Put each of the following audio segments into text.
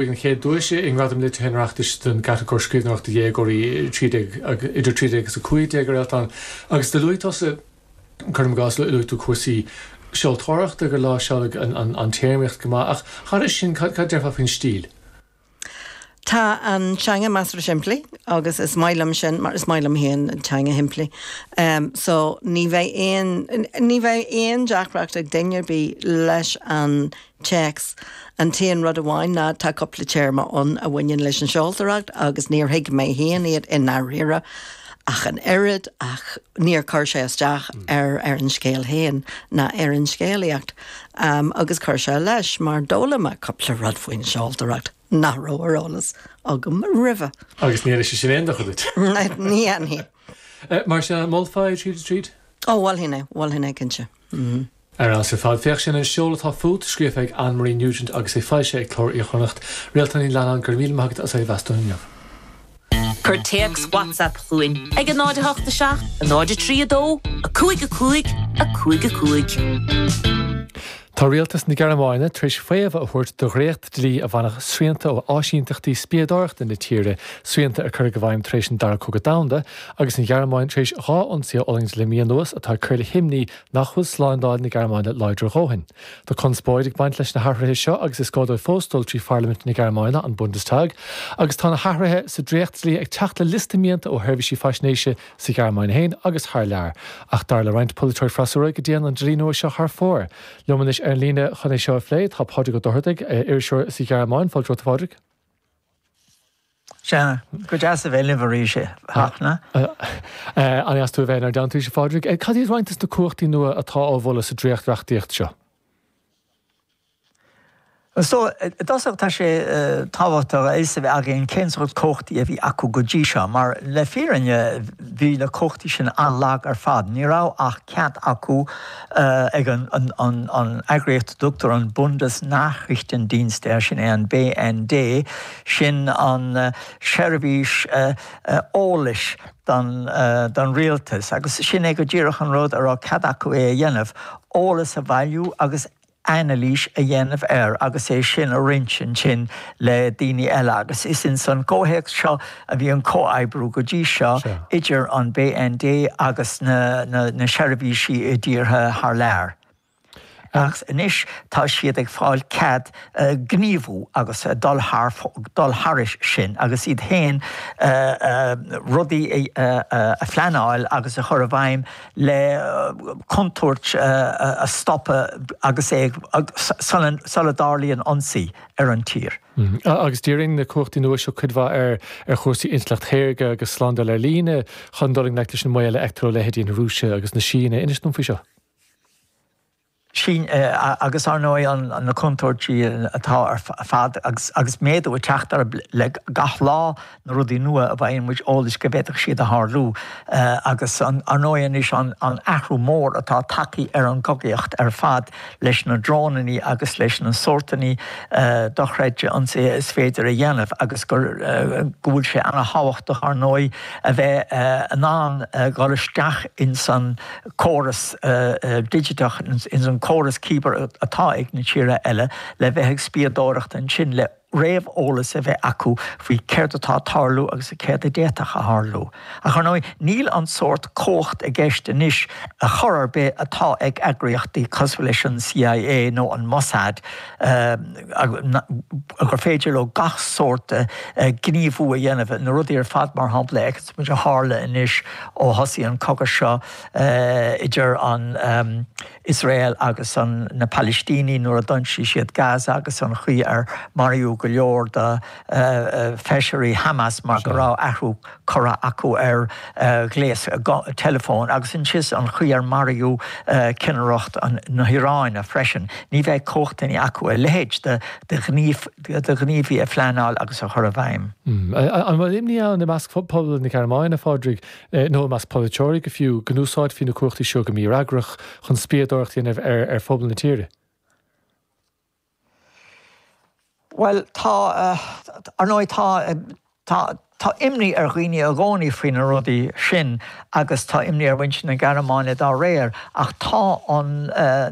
Bhuaigh an chéad duais i nGradaim Liteartha an Oireachtais don gcatagóir Scríbhneoireacht do Dhéagóirí idir 13 agus 15 a Réaltán agus do luaigh tusa, cuirim i gcás, luaigh tú cúrsaí seoltóireachta, gur láimhseáladh an téarmaíocht go maith ach thairis sin cad a déarfá faoin stíl? Tá an teanga measartha simplí agus is maith liom sin mar is maith liom féin teanga shimplí so ní bheidh aon, ní bheidh aon deacracht ag duine ar bith leis an Téacs, An t-aon rud amháin ná tá cúpla téarma ann a bhaineann leis an seoltóireacht agus níor thuig mé féin iad i ndáiríre ach an oiread ach níor chuir sé isteach ar an scéal féin ná ar an scéalaíocht agus chuir sé leis mar d'fhoghlaim mé cúpla rud faoin seoltóireacht nach raibh ar eolas agam roimhe. Agus níor dhein sé sin aon dochar duit? Ní dhéanfaidh. Mar sin, molfá é tríd is tríd? Ó, mholfainn é, mholfainn é cinnte. Ar fheabhas ar fad. Féach, sin an seol atá fút, scríofa ag Anne Marie Nugent agus é foilsithe ag Cló Iar-Chonnacht. Réaltán Ní Leannáin, go raibh míle maith agat as é a mheas dúinn inniu. Cuir téacs WhatsApp chugainn ag a 0 8 7 0 3 2 5 5 5 5. Tá Rialtas na Gearmáine tar éis faomhadh a thabhairt do dhréacht dlí a bhainfeadh srianta ó áisínteachtaí spiadóireachta na tíre, srianta a cuireadh i bhfeidhm tar éis an Dara Cogadh Domhanda, agus an Ghearmáin tar éis dhá ionsaí a fhulaingt le mí anuas atá ag cur le himní nach bhfuil slándáil na Gearmáine láidir a dhóthain. Tá conspóid ag baint leis na hathruithe seo agus is gá dóibh fós dul trí pharlaimint na Gearmáine, an Bundestag, agus tá na hathruithe sa dréacht-dlí ag teacht le liosta mianta ó sheirbhísí faisnéise sa Ghearmáin féin agus thar lear. Ach dar le roinnt polaiteoirí freasúra go dtéann an dlí nua seo thar fóir. Liom anois ar an líne chun é seo a phlé tá Pádraig Ó Dochartaigh, iriseoir sa Ghearmáin. Fáilte romhat, a Phádraig. Sea, go deas a bheith libh arís a Fhachtna. An-dheas tú a bheith inár dteannta arís, a Phádraig? Cad iad roinnt de na cumhachtaí nua atá á mholadh sa dréacht-reachtaíocht seo? So, i dtosach tá sé tábhachtach a fhios a bheith againn cén sórt cumhachtaí a bhí acu go dtí seo, mar le fírinne bhí na cumhachtaí sin an-lag ar fad. Ní raibh ach cead acu ag an eagraíocht a dtugtar an Bundesnachrichtendienst air, sin é an BND, Sin an seirbhís eolais don, don rialtas agus sin é go díreach an rud a raibh cead acu é a dhéanamh, eolas a bhailiú agus anailís a dhéanamh air agus é sin a roinnt ansin le daoine eile agus is ins an gcomhthéacs seo a bhí an comhoibriú go dtí seo idir an BND agus na seirbhísí i dtíortha thar lear. Ach anois tá siad ag fáil cead gníomhú agus dul thairis sin agus iad féin rudaí a phleanáil agus a chur i bhfeidhm le contúirt a stopadh agus é ag, sula dtarlaíonn ionsaí ar an tír. Agus díríonn na cumhachtaí nua seo cuid mhaith ar chúrsaí intleacht shaorga agus slándáil ar líne chun dul i ngleic leis an mbaol a fheictear ó leithéidí na Rúise agus na Síne. Inis dom faoi seo. Sin agus, ar ndóigh, na contúirtí atá ar fad agus méadú ag teacht orthu le gach lá, na rudaí nua a bhfaigheann muid eolas go bhféadfadh siad a tharlú. Agus, ar ndóigh, anois an athrú mór atá tagtha ar an gcogaíocht ar fad leis na drónainí agus leis na sórtanna dochreidte ionsaithe is féidir a dhéanamh agus go bhfuil sé ana-thábhachtach, ar ndóigh, a bheith in ann dul isteach ins an córas digiteach ins an córas cibear atá ag na tíortha eile le bheith ag spiadóireacht ansin le réamheolas a bheith acu faoi céard atá ag tarlú agus céard a d'fhéadfadh a tharlú. Ach ar ndóigh níl an sórt cumhacht i gceist anois ar chor ar bith atá ag eagraíochtaí cosmhail leis an C.I.A nó an Mossad gur féidir leo gach sórt gníomhú a dhéanamh, na rudaí ar fad mar shampla a muid a tharla anois ó thosaigh an cogadh seo idir an Iosrael agus na Palaistínigh nuair a d'ionsaigh siad Gaza agus an chaoi ar maraíodh go leor de fheisirí Hamas mar go raibh athrach curtha acu ar ghléas teileafóin agus ansiúd an chaoi ar maraíodh ceannaireacht na hIaráine freisin. Ní bheidh cumhachtaí acu a leithéid de ghníomh De ghníomhaí a phleanáil agus a chur i bhfeidhm. An bhfuil imní ann, i measc phobal na Gearmáine, a Phádraig, nó i measc polaiteoirí fiú, go n-úsáidfí na cumhachtaí seo go mífhreagrach chun spiadóireacht a dhéanamh ar phobal na tíre? Bhuel, tá. Ar ndóigh tá. Tá. Tá imní ar dhaoine i gcónaí faoi na rudaí sin agus tá imní ar mhuintir na Gearmáine dá réir, ach tá an,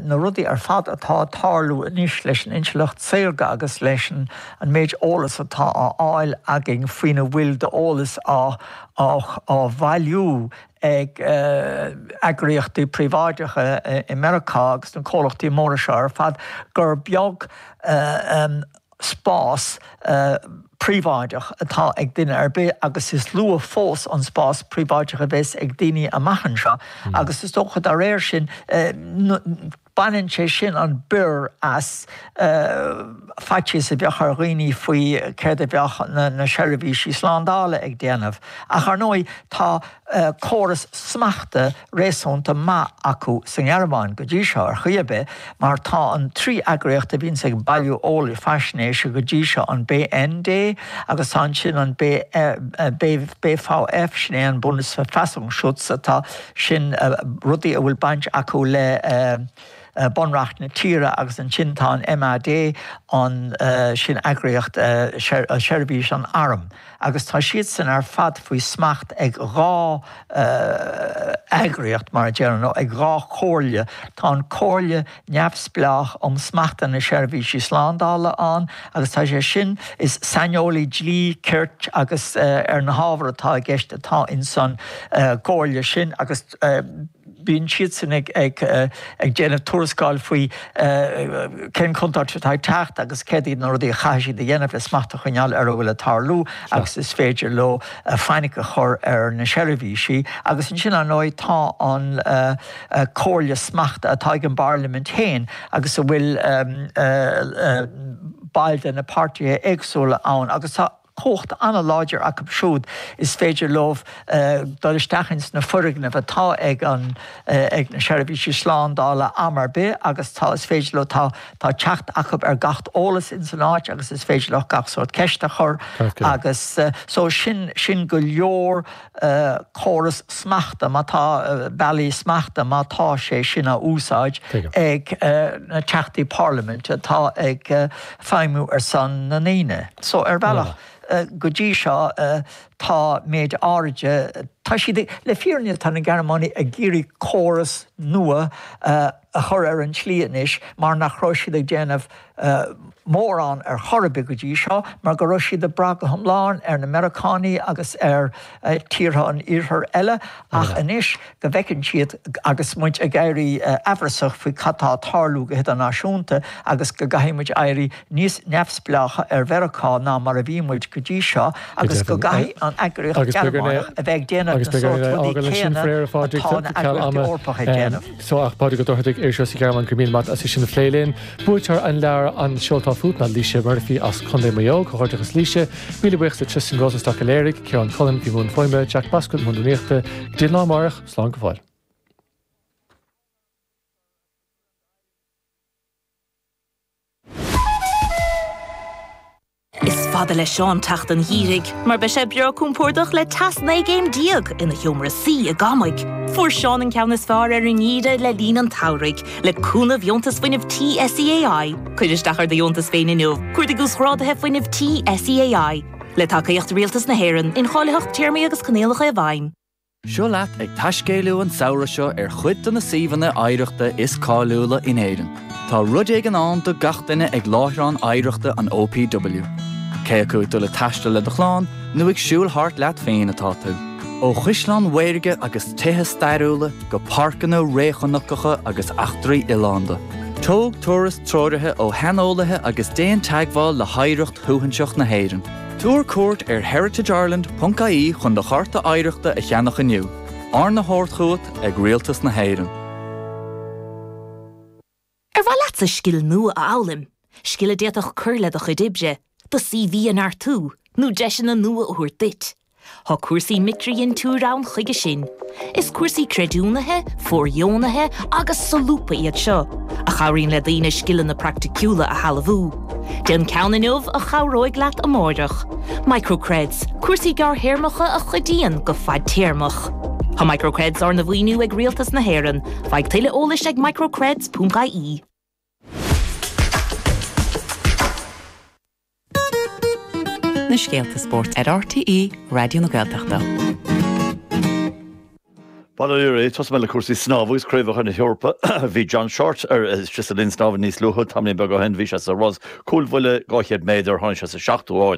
na rudaí ar fad atá ag tarlú anois leis an intleacht saorga agus leis an an méid eolas atá á fháil againn faoina bhfuil d'eolas á á bhailiú ag eagraíochtaí príobháideacha i Meiriceá agus na comhlachtaí móra seo ar fad gur beag spás príobháideach atá ag duine ar bith agus is lú fós an spás príobháideach a bheas ag daoine amach anseo agus is dócha dá réir sin baineann sé sin an bior as faitíos a bheadh ar dhaoine faoi céard a bheadh na seirbhísí slándála ag déanamh ach ar ndóigh tá córas smachta réasúnta maith acu sa nGearmáin, go dtí seo ar chaoi ar bith, mar tá an trí eagraíocht a bhíonns ag bailiú eolais faisnéise go dtí seo, an BND agus tá ansin an BFV, sin é an Bundesverfassungsschutz, tá sin rudaí a bhfuil baint acu le. Bunreacht na tíre agus ansin tá an MAD ann, sin eagraíocht seirbhís an airm agus tá siadsan ar fad faoi smacht ag dhá eagraíocht, mar a déarfá, nó ag dhá chomhairle. Tá an Comhairle Neamhspleách um Smachta na Seirbhísí Slándála ann agus tá sé sin, is saineolaí dlí, cirt agus ar na hábhair atá i gceist atá insan gcomhairle sin agus, Bíonn siadsan ag déanamh tuarascáil faoi cén contúirt atá ag teacht agus céard iad na rudaí a chaithfidh siad a dhéanamh le smacht a choinneáil ar a bhfuil ag tarlú agus is féidir leo fainic a chur ar na seirbhísí. Agus ansin, ar ndóigh, tá an Comhairle Smachta atá ag an bParlaimint féin agus a bhfuil baill de na páirtithe éagsúla ann agus tá. cumhacht an-láidir acu siúd is féidir leo dul isteach ins na foirgnimh atá ag an, ag na seirbhísí slándála am ar bith agus tá, is féidir leo, tá, tá teacht acu ar gach eolas ins an áit agus is féidir leo gach sórt ceist a chur agus so sin, sin go leor. córas smachta, má tá, bealaí smachta, má tá sé sin á úsáid ag na teachtaí parlaiminte atá ag feidhmiú ar son na ndaoine. So ar bhealach go dtí seo tá méid áiride, tá siad, le fírinne tá na Gearmánaigh ag iarraidh córas nua a a chur ar an tslí anois mar nach raibh siad ag déanamh mórán ar chor ar bith go dtí seo mar go raibh siad ag brath go hiomlán ar na Meiriceánaigh agus ar tíortha an Iarthair eile ach anois go bhfeiceann siad agus muid ag éirí aimhreasach faoi cad tá ag tarlú go hidirnáisiúnta agus go gcaithfidh muid éirí níos neamhspleácha ar Mheiriceá ná mar a bhí muid go dtí seo agus go gcaithfidh an eagraíocht Ghearmánach a bheith ag déanamh na sórt rudaí céanna atá na heagraíochtaí Eorpacha ag déanamh. Seo ach Pádraig Ó Dochartaigh, Iriseoir sa Ghearmáin go raibh míle maith agat as é sin a phlé linn. Buaiteoir an leabhair An Seol Atá Fút ná Laoise Murphy as Contae Mhaigh Eo, Comhghairdeachas Laoise, míle buíochas le Tristan Rosenstock a léirigh, Ciarán Cullen, a bhí i mbun fuaime, Jack Bascombe, i mbun na nuaíochta, go dtí an lá amárach, slán go fóill. Is fada le Seán teacht an gheimhridh mar beidh sé breá compordach le teas 19 gcéim ina sheomra suí i gCamaigh. Fuair Seán an ceann is fearr ar an ngeimhreadh le linn an tsamhraidh le cúnamh dheontas fuinnimh tí SEAI. Cuir isteach ar do dheontas féin inniu. Cuardaigh uasghráduithe fuinnimh tí SEAI le tacaíocht Rialtas na hÉireann, incháilitheacht téarmaí agus coinníollacha i bhfeidhm. Seo leat ag taiscéaladh an samhradh seo ar chuid de na suíomhanna oidhreachta is cáiliúla in Éirinn. Tá rud éigin ann do gach duine ag láithreáin oidhreachta an OPW. Cé acu ag dul ag taisteal le do chlann nó ag siúl thart leat féin atá tú. Ó chaisleáin mhaorga agus tithe stairiúla go páirceanna réchnocacha agus eachtraí oileánda, tóg turas treoraithe ó shaineolaithe agus déan teagmháil le hoidhreacht shuaithinseach na hÉireann. Tabhair cuairt ar heritageireland ponc ie chun do chárta oidhreachta a cheannach inniu, arna thabhairt chugat ag Rialtas na hÉireann. Ar mhaith leatsa scil nua a fhoghlaim, scil a d'fhéadfadh cur le do chuid oibre, do CV a neartú, nó deiseanna nua a thabhairt duit Tá cúrsaí micridhintiúr ann chuige sin. Is cúrsaí creidiúnaithe, fóirdheonaithe agus solúbtha iad seo, a chabhraíonn le daoine scileanna praiticiúla a shealbhú. Déan ceann inniu a chabhróidh leat amárach. Microcreds, cúrsaí gearrthéarmacha a chuidíonn go fadtéarmach. Tá Microcreds arna mhaoiniú ag Rialtas na hÉireann. Faigh tuilleadh eolais ag microcreds.ie. Na scéalta spóirt ar RTÉ Raidió na Gaeltachta. Bail ó Dhia oraibh, tosóidh mé le cúrsaí snámha agus craobhacha na hEorpa. Bhí John Shortt ar ais sa linn snámha níos luaithe, tamaillín beag ó shin bhí sé sa rás cúlbhuille, 200 méadar, tháinig sé sa seachtú áit.